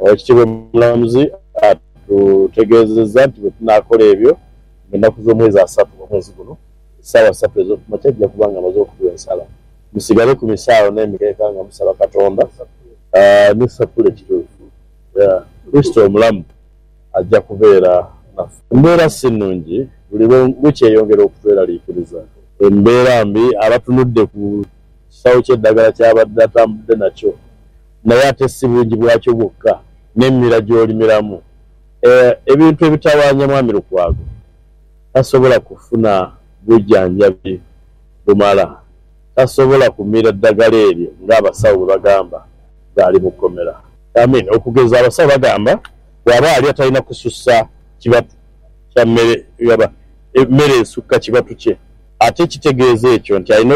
Oweekitiibwa Omulamuzi atutegeezezza nti bwe tunaakola ebyo mu nnaku z'omwezi asatu omwezi guno, essaawa ssatu ez'oku makya ajja kuba nga amaze okutuwa ensala. Musigale ku misaawo n'emikeeka nga musaba Katonda ni sapule kituufu. Kurisito omulamu ajja kubeera naffe. Embeera si nnungi buli lwe wiki eyongera okutweraliikiriza. Embeera mbi. Abatunudde ku kisawo ky'eddagala ky'abadde atambudde nakyo Naye ate si bungi bwakyo bwokka, n'emimira gy'olimiramu ebintu ebitawaanya Mwami Lukwago tasobola kufuna bujanjabi bumala, tasobola kumira ddagala eryo ng'abasawo bwe bagamba ng'ali mu kkomera. I mean okugeza abasawo bagamba bw'aba alya talina kusussa kibatu kya mmere oba emmere esukka kibatu kye, ate kitegeeza ekyo nti alina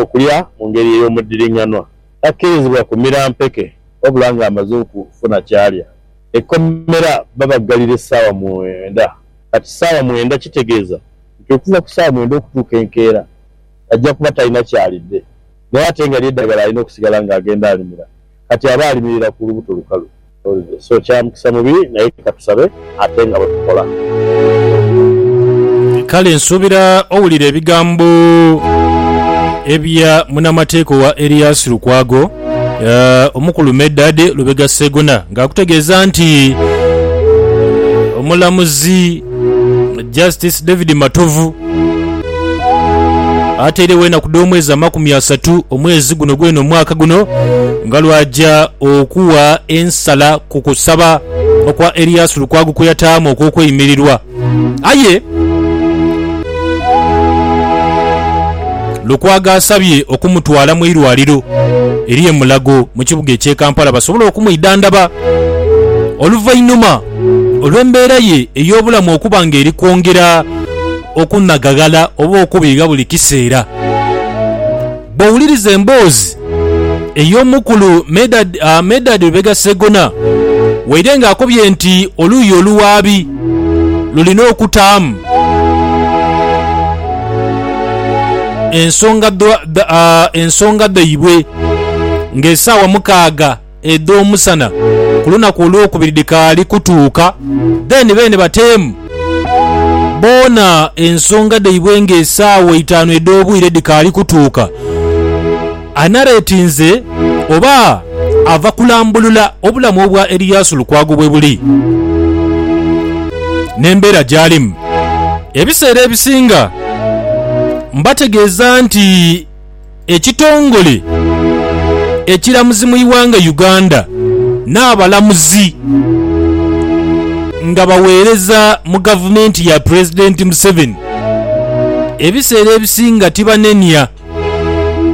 okulya mu ngeri ey'omuddiring'anwa takkirizibwa kumira mpeke wabula ng'amaze okufuna ky'alya. Ekkomera babaggalira essaawa mwenda. Kati ssaawa mwenda kitegeeza nti okuva ku ssaawa mwenda okutuuka enkeera ajja kuba talina ky'alidde naye ate nga ly'eddagala alina okusigala ng'agenda alimira. Kati aba alimirira ku lubuto lukalu. So kya mukisa mubi, naye ka tusabe ate nga bwe tukola. Kale nsuubira owulira ebigambo ebya munamateeka owa Erias Lukwago, eh, omukulu Medard Lubega Ssegona ng'akutegeeza nti omulamuzi Justice David Matovu atairegho enaku dh'omwezi amakumi asatu omwezi guno gwene omwaka guno nga lwaja okuwa ensala ku kusaba okwa Erias Lukwago kweyataamu okw'okweimirirwa aye Lukwago asabye okumutwala mu irwaliro eri e Mulago mu kibuga ekye Kampala basobole okumwidhandhaba oluvainhuma Olw'embeera ye ey'obulamu okuba ng'eri kwongera okunagaghala oba okubiigha buli kiseera, bw'owuliriza emboozi ey'omukulu Medard Lubega Ssegona waire ng'akobye nti oluuyi oluwaabi lulina okutaamu ensonga dhaibwe ng'esaawa mukaaga edh'omusana ku lunaku olwokubiri dhikaali kutuuka, then beene bateemu boona ensonga dhaibwe nga esaawa eitaanu edh'obwire dhikaali kutuuka. Anareetinze oba ava kulambulula obulamu obwa Eriyasu Lukwago bwebuli n'embeera gyalimu. Ebiseera ebisinga mbategeeza nti. ekitongole ekiramuzi mu ighanga Uganda n'abalamuzi nga baweereza mu gavumenti ya Pulezidenti Museveni ebiseera ebisinga tibanenia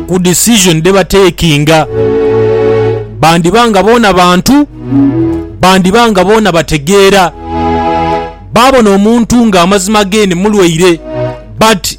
ku decision dhebatakinga bandiba nga boona bantu, bandiba nga boona bategeera, baabona omuntu nga amazima ge ni mulwaire but.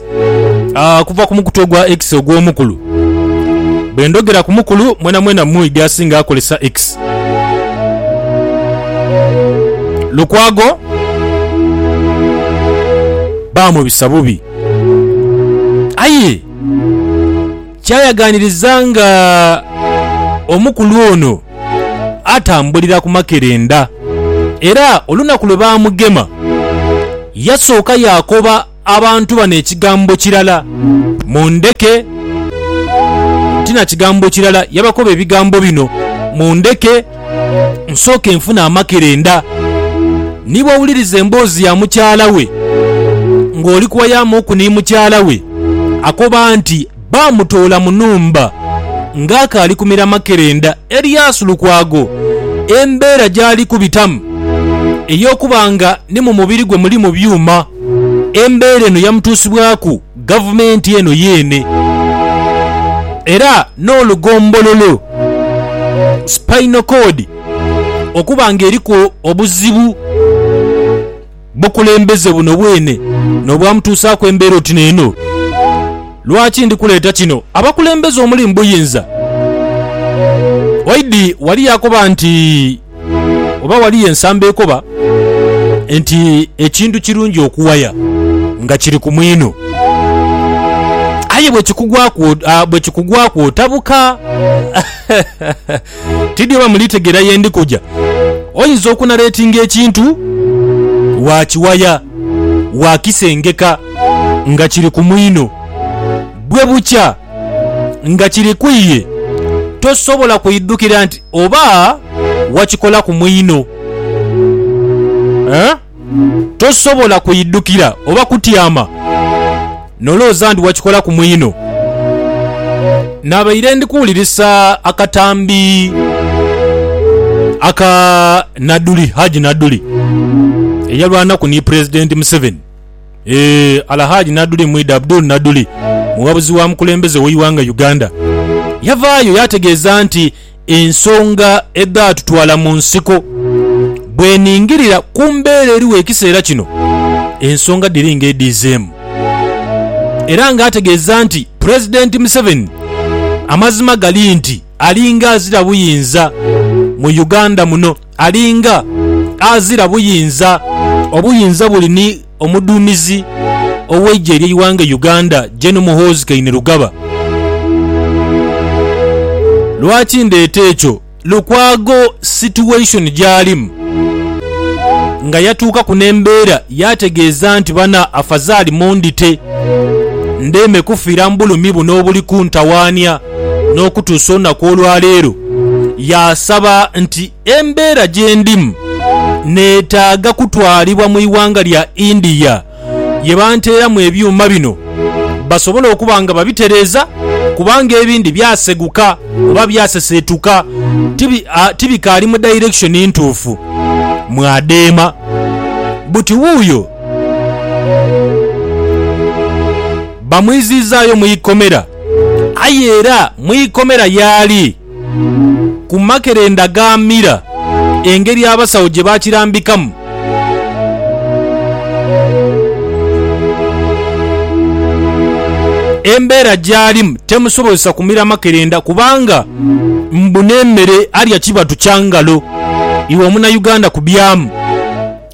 Ah, kuva ku mukutu ogwa X ogw'omukulu. Bwe ndhogera ku mukulu, mwenamwena mwidhi asinga akolesa X. Lukwago baamubisa bubi. Aye kyayaganiriza nga omukulu ono atambulira ku makerenda era olunaku lwe baamugema yasooka yaakoba Abantu bano ekigambo kirala mundheke. Ti na kigambo kirala yabakoba ebigambo bino, Mundheke nsooke nfune amakerenda. Ni bw'owuliriza emboozi ya mukyala we ng'oli kuwayaamu oku ni mukyala we, akoba nti, baamutoola mu nhumba ng'akaali kumira makerenda. Elias Lukwago embeera gy'ali kubitamu ey'okuba nga ni mu mubiri gwe mulimu byuma, embeera eno yamutuusibwaku Gavumenti eno yeene era n'olugombololo, spinal cord, okuba ng'eriku obuzibu. Bukulembeze buno bwene n'obwamutuusaaku embeera oti n'eno. Lwaki ndi kuleeta kino? Abakulembeze omuli mu buyinza. Waidi wali yakoba nti, oba waliyo ensamba ekoba nti ekintu kirungi okuwaya nga kiri ku mwino. Aye bwe kikugwaku, ah, bwe kikugwaku otabuka. Tidhi oba mulitegeera ye ndi kuja. Oyinza okunaretinga ekintu waakiwaya, waakisengeka nga kiri ku mwino. Bwe bukya nga kiri ku ye, tosobola kuidhukira nti oba wakikola ku mwino. Tosobola kuidhukira oba kutyama nolowooza ndi wakikola ku mwino. Nabaire ndi kuwulirisa akatambi aka Naduli, Haji Naduli eyalwanaku ni Pulezidenti Museveni. Eeh, Alhaji Naduli Mwidha Abdul Naduli, muwabuzi wa mukulembeze w'eighanga Uganda, yavaayo yategeeza nti Ensonga edhaatutwala mu nsiko. Bweningirira ku mbeera eriwo ekiseera kino, ensonga dhiri nga edhiizeemu era nga ategeeza nti Pulezidenti Museveni amazima gali nti alinga azira buyinza mu Uganda muno. Ali nga azira buyinza. Obuyinza buli ni omuduumizi ow'eigye ery'eighanga e Uganda, Gen Muhoozi Kainerugaba. Lwaki ndeeta ekyo? Lukwago situation gy'alimu nga yatuukaku n'embeera yaategeeza nti bana afazaali mundhite ndheeme kufiira mu bulumi buno obuli kuntawaania. n'okutuusa olunaku olwa leero yaasaba nti embeera gye ndimu neetaaga kutwalibwa mu ighanga lya India ye banteeramu ebyuma bino basobole okuba nga babitereeza kubanga ebindi byaseguka oba byaseseetuka tibikaali mu direction ntuufu mw'adheema buti wuuyo bamwiziizaayo mu ikomera. Aye era mu ikomera yaali ku makerenda ga mira, engeri abasawo gye baakirambikamu. Embeera gy'alimu temusobozesa kumira makerenda kubanga mbu n'emmere alya kibatu kya ngalo. Iwe Omunayuganda kubyamu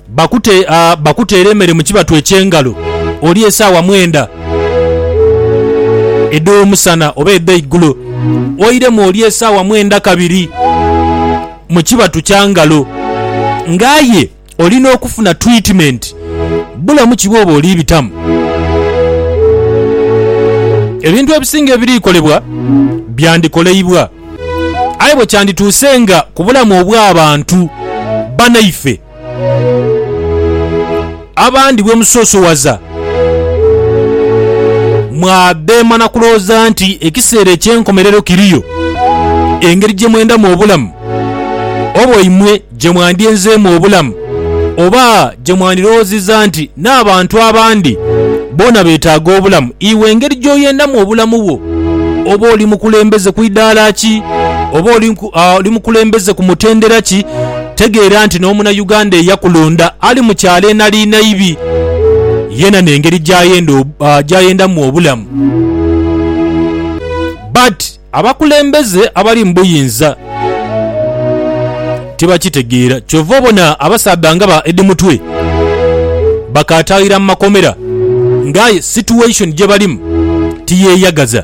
Bakute, a, bakuteere emere mu kibatu eky'engalo, olye esaawa mwenda edh'omusana oba edh'eigulo, oiremu olye esaawa mwenda kabiri mu kibatu kya ngalo. Nga aye olina okufuna twitimeenti bulamu ki bwoba oli bitamu. Ebintu ebisinga ebiri kolebwa byandikoleibwa. Aye bwe kyandituuse nga ku bulamu obw'abantu banaife, Abandi bwe musoosowaza, mwabeema na kulowooza nti ekiseera eky'enkomerero kiriyo. Engeri gye mwendamu obulamu, oba imwe gye mwandyenzeemu obulamu, oba gye mwandirowoozezza nti n'abantu abandi boona beetaaga obulamu, iwe engeri gy'oyendamu obulamu bwo, oba oli mukulembeze ku idaala ki, oba oli mukulembeze ku mutendera ki, Tegeera nti n'omuna Uganda eyakulonda ali mu kyalo enali naibi, yena nengeri jayendamu obulamu. But abakulembeze abali mu buyinza tibakitegeera kyova obona abasaadha nga ba Eddie Mutwe bakatayira mu makomera nga aye situation jebalimu tiyeyagaza.